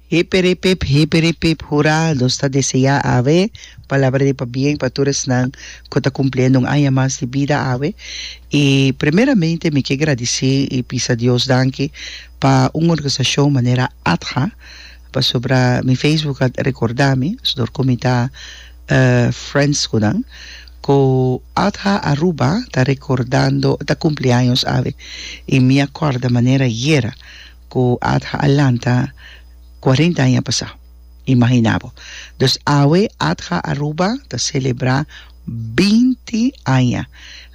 Hiperipip, hiperipip, hurá! Nos ta deseá awe palabra di pabien pa tur esnan ku ta kumpliendo un aña mas di bida awe. I primeramente mi ke gradisí i bisa Dios danki pa un organisashon manera ATHA, pasobra mi facebook a rekordá mi, sdor ku mi ta friends ku nan, ku ATHA Aruba ta rekordando, ta kumpli años awe. I mi a kòrda manera yera. cu Adha a lanta cuarenta aña pasá. Imaginá bo. Dus awe Adha Aruba ta celebrá binti aña.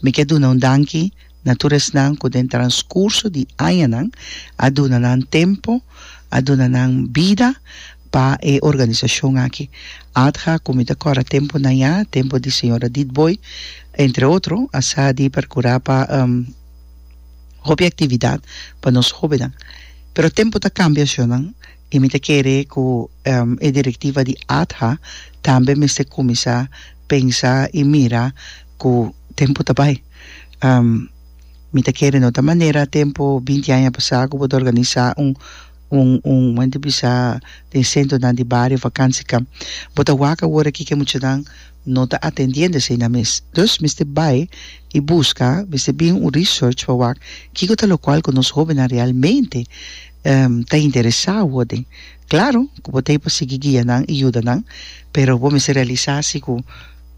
Mi ke duna un danki na tur esnan cu den transcurso di añanan a duna nan tempo, a duna nan bida pa e organisacion aki. Adha, cu mi ta cora temponan ya, tempo di señora Ditbooi, entre otro, a sa di percurá pa. hopi actividad pa nos hobennan. Pero tempo ta cambia Sjonan y mi ta kere cu e directiva di ATHA tambe mester cuminsa pensa y mira cu tempo ta bay. Mi ta kere no ta manera tempo binti aña pasa cu bo ta organisa un un un menti bisa den centronan di bario vacanciecamp. Bo ta wak awor aki cu e muchanan. No ta atendiendo esey na mes. Dus mester bay y busca, mester bin un research pa wak kico ta locual cu nos hobennan realmente ta interesa worden. Claro cu bo t'ey pa sigui guia nan y yuda nan, pero bo mester realisa si cu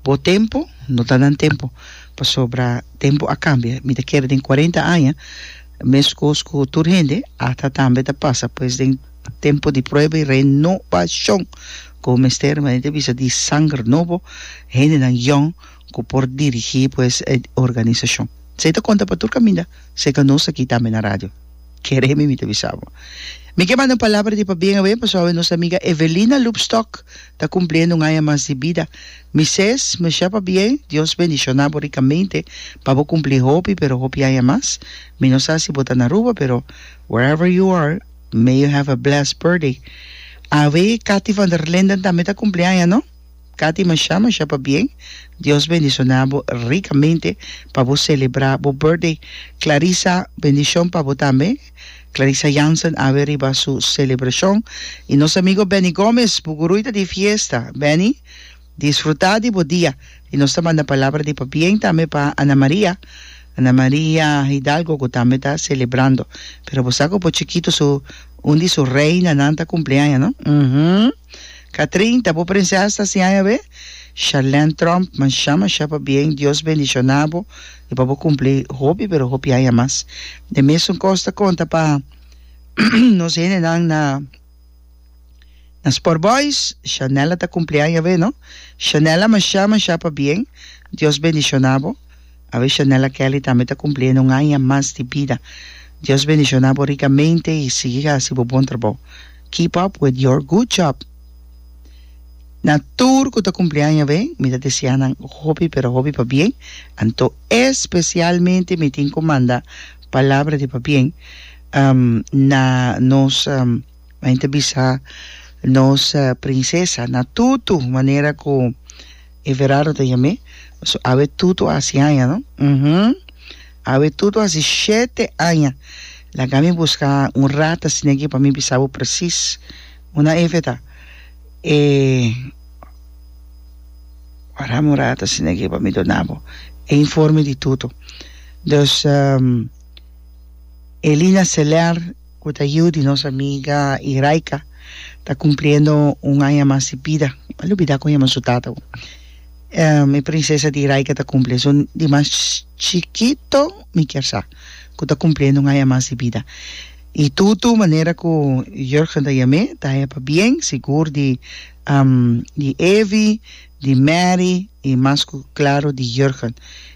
bo tempo no ta nan tempo, pasobra tempo a cambia. Mi ta kere den cuarenta aña mes cos cu tur hende ata tambe ta pasa pues den. Tempu di prueba i renobashon ku bo mester manera bisa di sanger nobo, hendenan yòn ku por dirigí pues e organisashon. Esei ta konta pa tur kaminda, serka nos aki tambe na radio. Kere mi mi ta bisa bo. Mi ke manda un palabra di pabien awé pasobra awé nos amiga Evelina Lubstock ta kumpliendo un aña mas di bida. Mises, mashá pabien, Dios bendishoná bo rikamente pa bo kumplí hopi pero hopi aña mas. Mi no sa si bo ta na Aruba pero wherever you are, May you have a blessed birthday Awe Cathy van der Linden tambe ta cumpli aña no? Cathy masha masha pabien Dios bendiciona bo ricamente pa bo celebra bo birthday Clarisa bendicion pa bo tambe Clarisa Jansen awe riba su celebracion y nos amigo Benny Gomez Bugurui ta di fiesta Benny Disfruta di bo dia. Y nos ta manda palabra di pabien tambe pa Ana Maria, Ana Maria Hidalgo cu tambe ta celebrando. Pero bo sa cu bo chikito su un di su reinanan ta cumpleaña no? Uhmm. Catrin, ta bo prinses ta hasi aña awe? Charlene Trump, masha masha pabien, Dios bendiciona bo y pa bo cumpli hopi pero hopi aña mas. Den mesun cos ta conta pa nos hendenan na. Na Sport Boys, Shanella ta cumpli aña awe, no? Shanella masha masha pa bien, Dios bendiciona bo. Awe Shanella Kelly tambe ta cumpliendo un aña mas di bida. Dios bendiciona bo ricamente y sigui haci bo bon trabao. Keep up with your good job. Na tur cu ta cumpli aña awe, mi ta desea nan hopi pero hopi pa bien, anto especialmente mi tin cu manda palabra di pa bien. Um, na nos, um, main ta bisa nos uh, prinsesa, na Tutu, manera ku Everardo ta yam'é, so awe Tutu a hasi aña, no? Uh-huh. Awe Tutu a hasi shete aña. Laga mi buska un rat asina aki pa mi bisa bo presis. Una efe ta. E, warami un rat asina aki pa mi dona bo e informe di Tutu. Dus, um. Elina Celer cu ta yiu di nos amiga Iraika ta cumpliendo un aña mas di bida m'a lubida con yama su tata bo mi princesa di Iraika ta cumpli so di mas chikito mi kier sa cu ta cumpliendo un aña mas di bida y tutu manera cu Jurgen ta yam'e ta haya pabien sigur di Evi di Mary y mas cu claro di Jurgen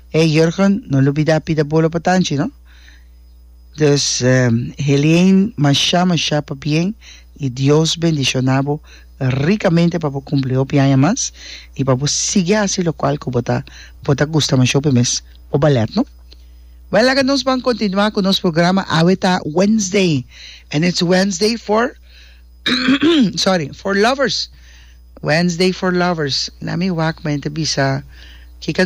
Hey Jurgen, no lubida pida bolo pa Tanchi no. Dus Helien masha masha pabien y Dios bendiciona bo ricamente pa bo cumpli hopi aña mas y pa bo sigui haci locual cu bo ta bo ta gusta masha hopi mes bo ballet no. Well laga nos ban continua cu nos programa awe ta Wednesday and it's Wednesday for sorry for lovers Wednesday for lovers na mi wak men ta bisa ki can